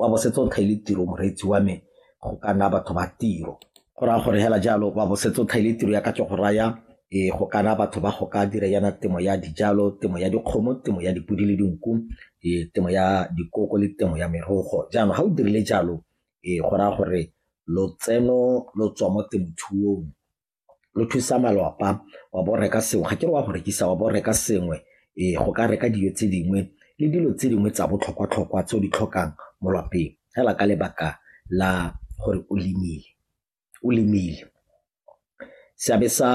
wa bo setse o tlhaile tiro moreetsi wa me go ka nna batho ba tiro go raya gore hela jalo wa bo setse o tlhaile tiro ya ka ke go raya e go kana batho ba go ka dira yana temo ya dijalo temo ya dikgomo temo ya dipodi le dinku e temo ya dikoko le temo ya merogo jaanong ga o dirile jalo e go raya gore lotseno lo tswa mo temothuong lo thusa malwapa wa bo reka sengwe ga ke re wa go rekisa wa bo reka sengwe ee go ka reka dijo tse dingwe le dilo tse dingwe tsa botlhokwa-tlhokwa tse o di tlhokang mo lapeng fela ka lebaka la gore o lemile o lemile seabe sa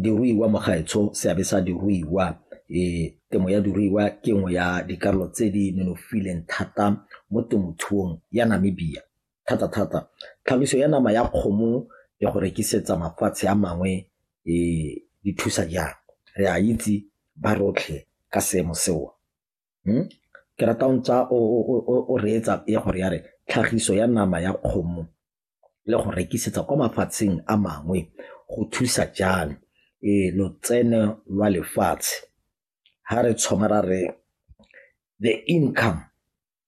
diruiwa mo gaetsho seabe sa diruiwa um temo ya diruiwa ke nngwe ya dikarolo tse di nonofileng thata mo temothuong ya namibia thata-thata tlhagiso ya nama ya kgomo ya go rekisetsa mafatshe a mangwe e thusa jang? Re a itse ba rotlhe ka seemo seo. Hmm? Ke rata o ntsa o reetsa ya gore ya re tlhagiso ya nama ya kgomo le go rekisetsa kwa mafatsheng a mangwe go thusa jang e lotseno lwa lefatshe ha re tshwamara re the income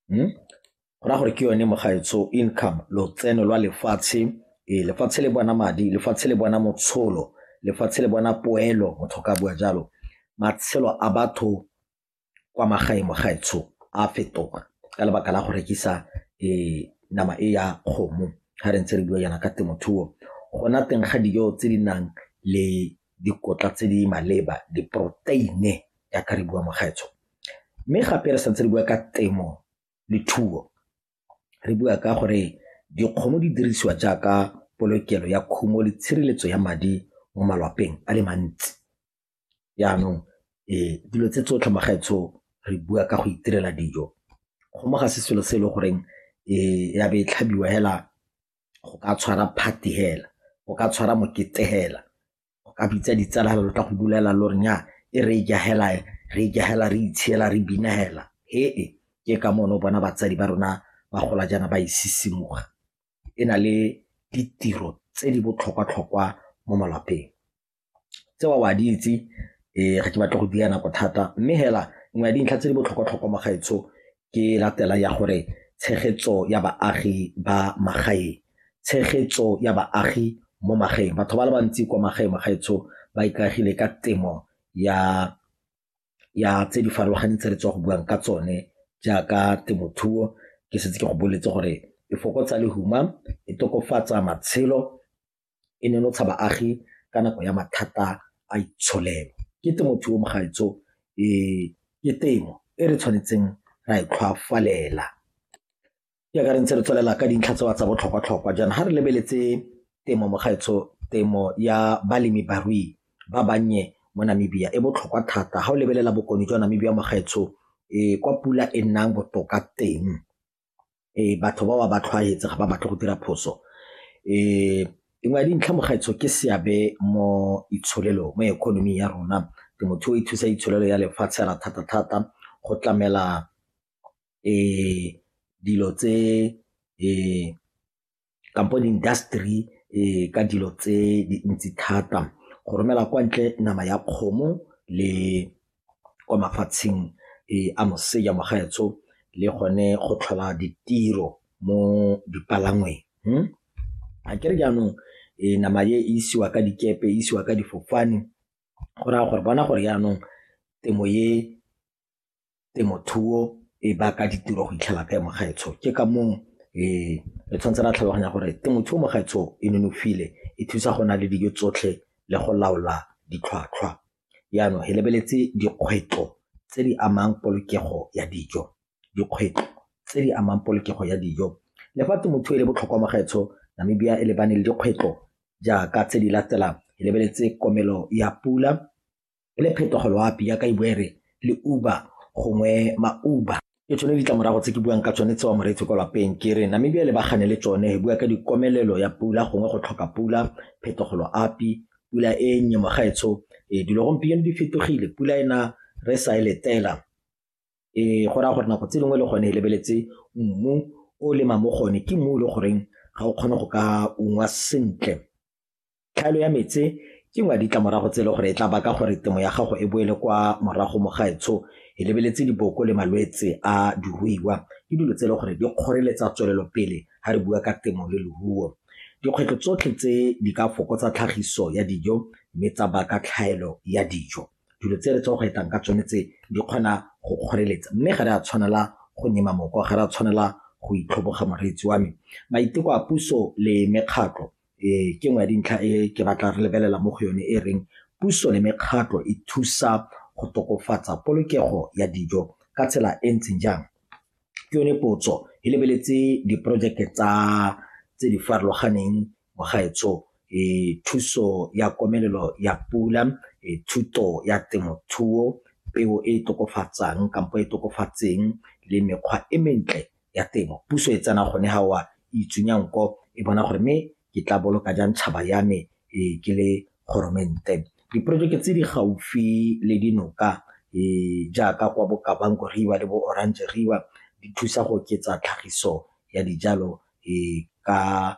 go raya gore ke yone mogaetsho income lotseno lwa lefatshe ee lefatshe le bona madi lefatshe le bona motsholo lefatshe le bona poelo motho ka bua jalo matshelo a batho kwa magaeng mogaetsho a fetoga ka lebaka la go rekisa um nama e ya kgomo ga re ntse re bua yana ka temothuo gona teng ga dijo tse di nang le dikotla tse di maleba, diporoteini jaaka re bua mokgetsho. Mme gape re santse re bua ka temo le thuo, re bua ka gore dikgomo di dirisiwa jaaka polokelo ya khumo le tshireletso ya madi mo malwapeng a le mantsi. Jaanong dilo tse tsotlhe magaetsho re bua ka go itirela dijo, kgomo ga se selo se e le goreng ya be e tlhabiwa fela go ka tshwara party hela go ka tshwara mokete hela go ka bitsa ditsala hela lo tla go bulela lo re nya e re ja hela re ja hela re itshela re bina hela he e ke ka mono bona batsadi ba rona ba gola jaana ba isisimuga e na le ditiro tse di botlhokwa-tlhokwa mo malapeng Tseo o a di itse, ee, ga ke batle go dira nako thata mme fela nngwe ya dintlha tse di botlhokwa-tlhokwa mo gaetsho ke e latelang ya gore tshegetso ya baagi ba magaeng, tshegetso ya baagi mo magaeng. Batho ba le bantsi kwa magaeng mo gaetsho ba ikaegile ka temo ya tse di farologaneng tse re tswa go buang ka tsone jaaka temothuo, ke setse ke go boletse gore e fokotsa lehuma, e tokafatsa matshelo e nonotsha baagi ka nako ya mathata a itsholelo. Ke temothuo mogaetsho ke temo e re tshwanetseng ra e tlhwafalela jaaka re ntse re tswelela ka dintlha tsa tsa botlhokwa-tlhokwa jaana ga re lebeletse temo mogaetsho temo ya balemi barui ba bannye mo Namibia e botlhokwa thata ga o lebelela bokone jwa Namibia mogaetsho kwa pula e nnang botoka teng batho bao ba ba tlhwaetse ga ba batle go dira phoso. Nngwe ya dintlha mo gaetsho ke seabe mo itsholelong mo economy ya rona, temothuo e thusa itsholelo ya lefatshe fela thata-thata go tlamela dilo tse . kampo di-industry ka dilo tse dintsi thata go romela kwa ntle nama ya kgomo le kwa mafatsheng a moseja mo gaetsho le gone go tlhola ditiro mo dipalangweng a ke re jaanong nama e isiwa ka dikepe e isiwa ka difofane go raya gore bona gore jaanong temo e temothuo e baka ditiro go itlhela kae mo gaetsho. Ke ka moo re tshwanetse ra tlhaloganya gore temothuo mo gaetsho e nonofile, e thusa go na le dijo tsotlhe le go laola ditlhwatlhwa. Jaanong re lebeletse dikgwetlho tse di amang polokego ya dijo, dikgwetlho tse di amang polokego ya dijo. Le fa temothuo e le botlhokwa mo gaetsho, Namibia e lebane le dikgwetlho jaaka tse di latelang, re lebeletse komelo ya pula, le phetogo loapi yaka e bua e re le Uber gongwe ma-Uber. Ke tsone ditlamorago tse ke buang ka tsone tsewa moreetsi kwa lapeng ke re Namibia le bagane le tsone e bua ka dikomelelo ya pula gongwe go tlhoka pula phetogo loapi pula e nnye mogaetsho e eh, dilo gompieno di fetogile pula ena re sa e letela e go raya gore nako tse dingwe le gone e lebeletse mmu o lema mo gone ke mmu e le goreng ga o kgone go ka ungwa sentle Tlhaelo ya metse ke nngwe ya ditlamorago tse e le gore e tla baka gore temo ya gago e boele kwa morago mo gaetsho e lebeletse diboko le malwetse a diruiwa ke dilo tse e le gore di kgoreletsa tswelelopele ga re bua ka temo le leruo. Dikgwetlho tsotlhe tse di ka fokotsa tlhagiso ya dijo mme tsa baka tlhaelo ya dijo. Dilo tse re tse go etang ka tsone tse di kgona go kgoreletsa mme ga re a tshwanela go nyema moko, ga re a tshwanela go itlhoboga moreetsi wa me. Maiteko a puso le mekgatlho Ee, ke nngwe ya dintlha e ke batla re lebelela mo go yone e reng puso le mekgatlho e thusa go tokofatsa polokego ya dijo ka tsela e ntseng jang ke yone potso e lebeletse diporojeke tsa tse di farologaneng mogaetsho e thuso ya komelelo ya pula e thuto ya temothuo peo e e tokofatsang kampo e tokofatseng le mekgwa e mentle ya temo puso e tsena gone ga wa itsunya nko e bona gore mme ke tla boloka jang tšhaba ya me e ke le goromente diporojeke tse di gaufi le dinoka e jaaka kwa bokabanko riwa le bo orange riwa di thusa go oketsa tlhagiso ya dijalo e ka